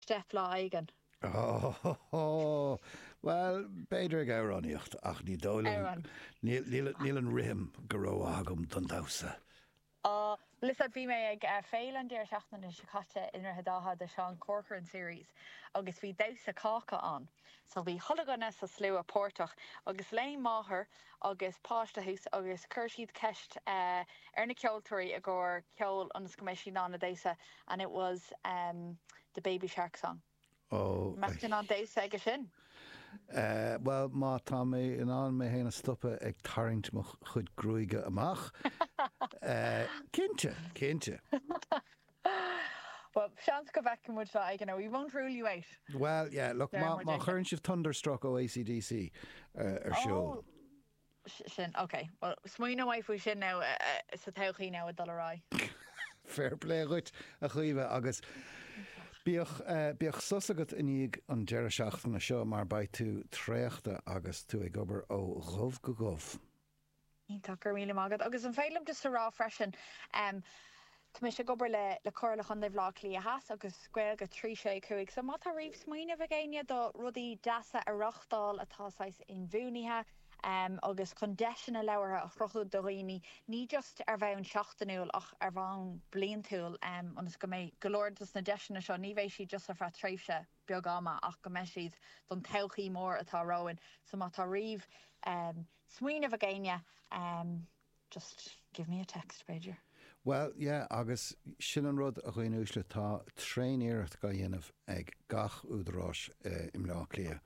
step lá éigin. Óóóó! Bhuel, b'fhéidir ag amhránaíocht, ach ní dóigh liom, Amhrán. níl an rithim go rómhaith agam don damhsa. Á, bhuel is ea, bhí mé ag féile an deireadh seachtaine seo caite i nDroichead Átha, The Sean Corcoran Series, agus bhí damhsa cáca ann. So bhí chuile dhuine sa slua páirteach, agus léim máthair agus páiste thuas agus chuir siad ceist ar na ceoltóirí i gcomhair ceoil ionas go mbeidh siad in ann a damhsa and it was em the baby shark song. Mbeadh tú in ann damhsa aige sin? Eh bhuel má tá mé in ann mé féin a stopadh ag tarraingt mo chuid gruaige amach eh cinnte. Bhuel, seans go bhfeicfidh muid lá éigin é, we won't rule you out! Bhuel, yeah, look, má chuireann sibh Thunderstruck ó AC/DC ar siúl. Oh, sin, ok. Bhuel, smaoineoidh muid faoi sin now, sa todhchaí now ag dul ar aghaidh. Fair play dhuit, a Chaoimhe, agus bíodh bíodh sos agat i ndiaidh an deireadh seachtaine seo, mar beidh tú traochta agus tú ag obair ó dhubh go dhubh. Iontach, go raibh míle maith agat. Agus an féidir liom just a rá freisin, em, tá mise ag obair le Comhairle Chontae Bhaile Átha Cliath Theas agus Gaeilge 365, so má tá riamh smaoineamh ag éinne do rudaí deasa a reáchtáil atá saghas inbhuanaithe agus chun deiseanna labhartha a chruthú do dhaoine, ní just ar bhonn seachtainiúil ach ar bhonn bliantúil, ionas go mbeidh go leor de na deiseanna seo, ní bheidh siad just ar feadh tréimhse. beag ama ach go mbeidh siad don todhchaí mór atá romhainn. So má tá riamh smaoineamh ag éinne just give me a text b'fhéidir. Bhuel, yeah, agus sin an rud, a dhaoine uaisle, tá tréaniarracht dhá dhéanamh ag gach údarás i mBleá Cliath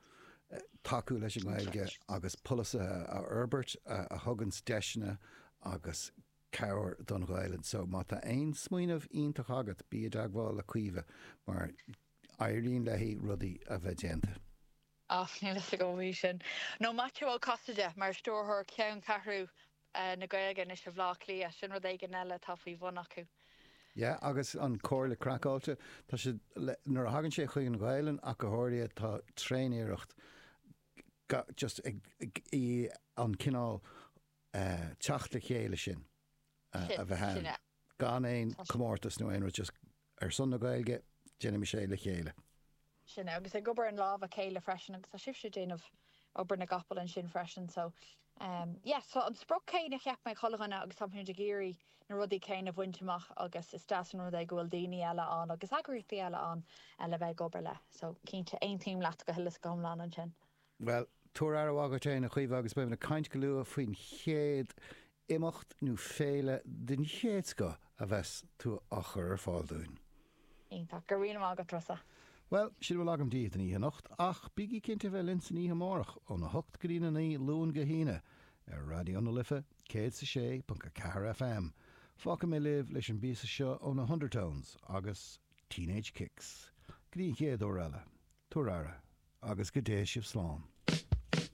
tacú leis an nGaeilge agus polasaithe a fhorbairt a thuganns deiseanna agus cabhair don Ghaelainn. So má tá aon smaoineamh iontach agat, bí i dteagmháil le Caoimhe mar Éiríonn léi rudaí a bheith déanta. Och, níl fhios agam faoi sin nó Maitiú Ó Casaide mar stiúrthóir Cheanncheathrú na Gaeilge anois i mBleá Cliath, sin rud éigin eile atá faoi bhun acu. Yeah, agus an Chomhairle Craiceáilte, tá siad le, nuair a thagann sé chuig an Ghaelainn ach go háirithe, tá tréaniarracht ga, just ag, i, an cineál eh teacht le chéile sin a bheith ann, gan aon comórtas nó aon rud, just. Ar son na Gaeilge, déanaimis é le chéile! sin é, agus ag obair as lámha a chéile freisin agus tá sibhse ag déanamh obair na gcapall ansin freisin so ehm yeah so an sprioc céanna de shaghas éigin ag chuile dhuine agus táimid ag iarraidh na rudaí céanna a bhaint amach agus is deas an rud é go bhfuil daoine eile ann agus eagraíochtaí eile ann le bheith ag obair le so cinnte aontaím leat go huile is go hiomlán ansin. Bhuel, tabhair aire mhaith dhuit féin, a Chaoimhe, agus beimid ag caint go luath faoin chéad imeacht nó féile den chéad scoth a bheas tú á chur ar fáil dúinn. Iontach. Go raibh maith agat, Rossa. Bhuel, sin a bhfuil agam daoibh don oíche anocht, ach bígí cinnte a bheith linn san oíche amárach, óna hocht go dtí na naoi, Luan go hAoine, ar Raidió na Life, céad is a sé ponc a ceathair FM. Fágfaidh mé sibh leis an bpíosa seo ó na hUndertones, agus. Teenage Kicks. Go dtí an chéad uair eile, tabhair aire, agus go dté sibh slán.